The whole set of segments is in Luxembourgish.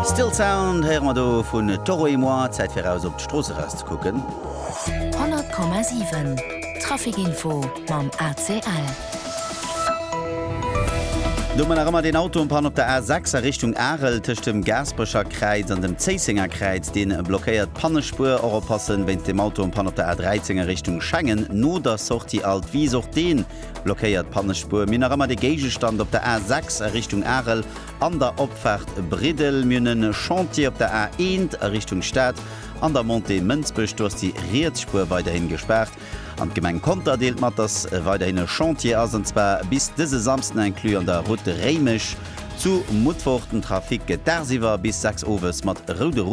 Still Sound héiere mer do vun Toro et moi, Zäit fir eraus op d'Strooss eraus ze kucken. 100,7 Traficinfo mam ACL. Do hu mer nach ëmmer deen Auto en panne op der A6 a Richtung Arel tëscht dem Gaasperecher Kräiz an dem Zéissenger Kräiz. Deen blockéiert d'Pannespuer. Och oppassen wéinst dem Auto en panne op der A13 a Richtung Schengen no der Sortie Alt Wies. Och deen. Blockéiert d'Pannespuer. Mir hunn nach ëmmer dee Géigestand op der A6 a Richtung Arel an der Opfaart Briddel. Mir hunn e Chantier op der A1 a Richtung Stad an der Montée Mënsbech. Do ass déi riets Spuer weiderhin gespaart. An d'Gemeng Conter deelt mat, dass weiderhin e Chantier ass, an zwar bis dëse Samsden inclus an der Route Réimech zu Mutfort. Den Trafic gëtt dagsiwwer bis 6 owes mat roude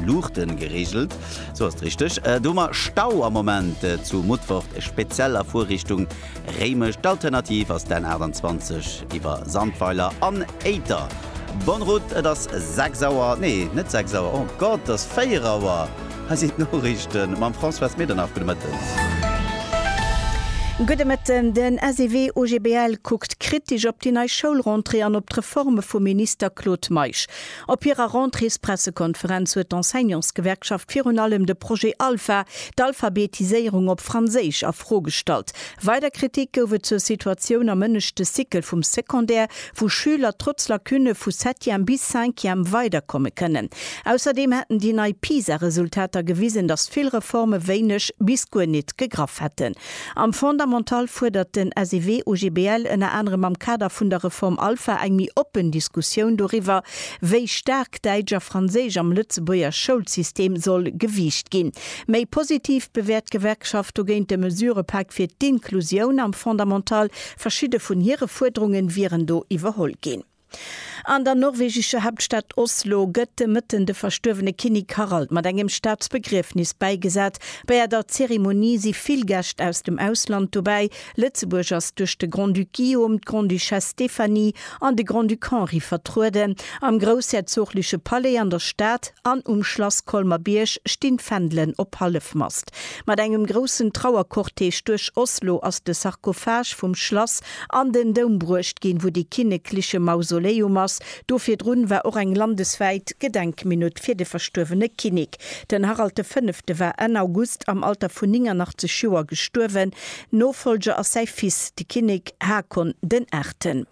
Luuchte gereegelt. Sou ass et richteg. Et hu mer Stau am Moment zu Mutfert, speziell a Fuerrichtung Réimech. D'Alternativ ass d'N 28 iwwer Sandweiler an Éiter. Bonne route, et ass 6 Auer, nee net 6 Auer, oh Gott, et ass 4 Auer. Hei sinn d'Noriichte mam Françoise Medernach. Gudde Mëtten. Gudde Mëtten. Den SEW OGBL kuckt kritesch op déi nei Schoulrentrée an op d'Reforme vum Minister Claude Meisch. Op hirer Rentréespressekonferenz huet d'Enseignantsgewerkschaft virun allem de Projet Alpha, d'Alphabetiséierung op Franséisch, a Fro gestallt. Weider Kritik gouf et zur Situatioun am ënneschte Cycle vum Secondaire, wou Schüler trotz Lacunne vu Septième bis Cinquième weiderkomme kënnen. Ausserdeem hätten déi nei PISA-Resultater gewisen, datt vill Reforme wéineg bis guer nit gegraff hätten. Am Fondamental fuerdert den SEW OGBL ënner anerem am Kader vun der Reform Alpha eng méi oppen Diskussioun doriwwer, wéi staark Däitsch a Franséisch am Lëtzebuerger Schoulsystem soll gewiicht ginn. Méi positiv bewäert d'Gewerkschaft dogéint de Mesurëpak fir d'Inklusioun am Fondamental. Verschidde vun hire Fuerderunge wieren do iwwerholl ginn. An der norwegescher Haaptstad Oslo gëtt de Mëtten de verstuerwene Kinnek Harald mat engem Staatsbegriefnis bäigesat. Bäi der Zeremonie si vill Gäscht aus dem Ausland dobäi. Lëtzebuerg ass duerch de Grand-Duc Guillaume, d'Grande-Duchesse Stéphanie an de Grand-Duc Henri vertrueden. Am groussherzogleche Palais an der Stad an um Schlass Colmer-Bierg stinn d'Fändelen op Hallefmast. Mat engem groussen Trauercortège duerch Oslo ass de Sarkophage vum Schlass an den Doum bruecht ginn, wou de kinnekliche Mausoleum ass. Do virdrun war och eng landeswäit Gedenkminutt fir de verstuerwene Kinnek. Den Harald de Fënnefte war Enn August am Alter vun 89 Joer gestuerwen. Nofollger ass säi Fils, de Kinnek Haakon den Aachten.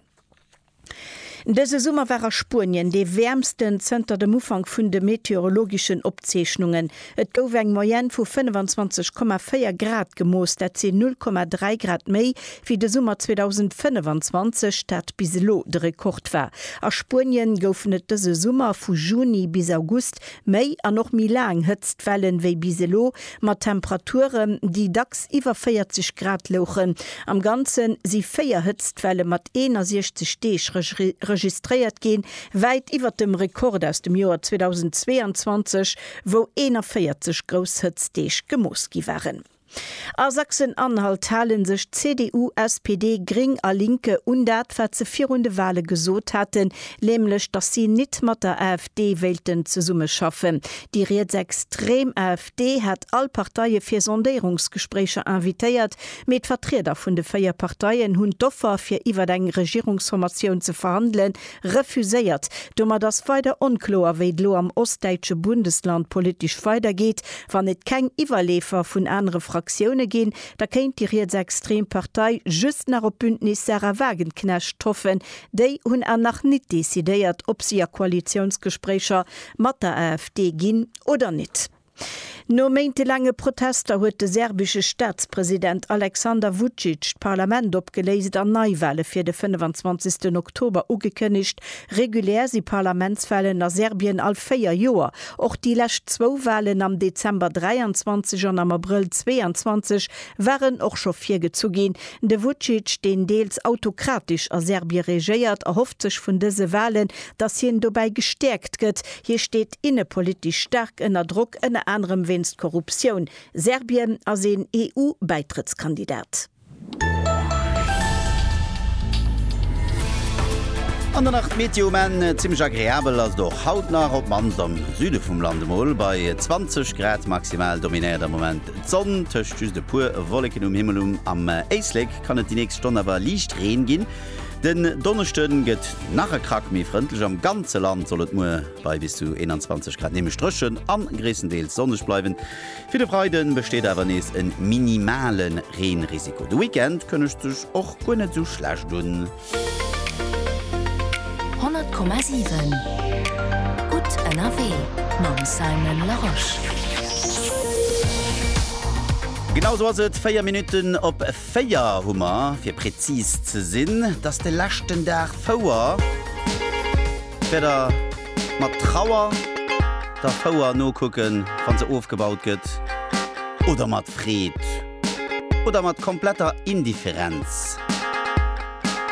Dëse Summer war a Spuenien dee wäermsten zënter dem Ufank vun de meteorologeschen Opzeechnungen. Et gouf eng Moyenne vu 25,4 Grad gemooss, dat sinn 0,3 Grad méi wéi de Summer 2025, dat bis elo de Rekord war. A Spuenien goufen et dëse Summer vu Juni bis August méi an och méi laang Hëtztwellen, wéi bis elo Mat Temperaturen, déi dacks iwwer 40 Grad louchen. Am Ganze si véier Hëtztwelle mat 61 Deeg registréiert ginn, wäit iwwer dem Rekord aus dem Joer 2022, wou 41 grouss Hëtztdeeg gemooss gi waren. A Sachsen-Anhalt hale sech CDU, SPD, Gring a Linke un dat, wat se virun de Wale gesot haten, nämlech datt si nit mat der AfD, AfD wéilten zesummeschaffen. Déi rietsextrem AfD hat all Parteie fir Sondéierungsgespréicher invitéiert, mee d'Vertrieder vun de véier Parteien hunn d'Offer fir iwwer eng Regierungsformatioun ze verhandele refuséiert. Domat ass weider onkloer, wéi et elo am ostdäitsche Bundesland politesch weidergeet. Wann et keng Iwwerleefer vun anere Fraktioune ginn, da kéint déi rietsextrem Partei just nach op d'Bündnis Sarah Wagenknecht hoffen, Déi hunn awer nach nit decidéiert, ob si a Koalitiounsgespréicher mat der AfD ginn oder nit. No méintelaange Protester huet de serbische Staatspresident Alexander Vucic d'Parlament opgeléist an Neiwale fir de 25 Oktober ugekënnegt. Regulär si Parlamentswalen a Serbien all véier Joer. Och déi lescht zwou Walen am Dezember 23 an am Abrëll 22 waren och scho virgezu ginn. De Vucic, deen deels autokratesch a Serbie regéiert, erhofft sech vun dëse Walen, datt hien dobäi gestäerkt gëtt. Hie steet innepolitesch staark ënner Drock, ënner anerem wéinst Korruptioun. Serbien ass een EU-Bäitrëttskandidat. An dann nach d'Meteo, mä zimmlech agreabel ass et och haut nach, op d'mannst am Süde vum Land, emol bei 20 Grad maximal dominéiert am Moment. D'Sonn tëscht just e puer Wolleken um Himmel. Um am Éislek kann et déi nächst Stonn awer liicht Reen ginn. Den Donneschde gëtt nach e Krack méi frëndlech. Am ganze Land soll et muer bei bis zu 21 Grad nämlech dréchen a gréisstendeels sonneg bleiwen. Fir de Freide besteet awer nees e minimale Reenrisiko. De Weekend kënnegt sech och guer net esou schlecht un. 100,7 Gutt ënnerwee mam Simon Larosche. Genau sou ass et, 4 Minutten op 4 hu mer, fir präzis ze sinn. Et ass de leschten Dag Fouer. Wäert Der mat Trauer der Fouer nokucken, wa se ofgebaut gëtt, oder mat Freed, oder mat kompletter Indifferenz?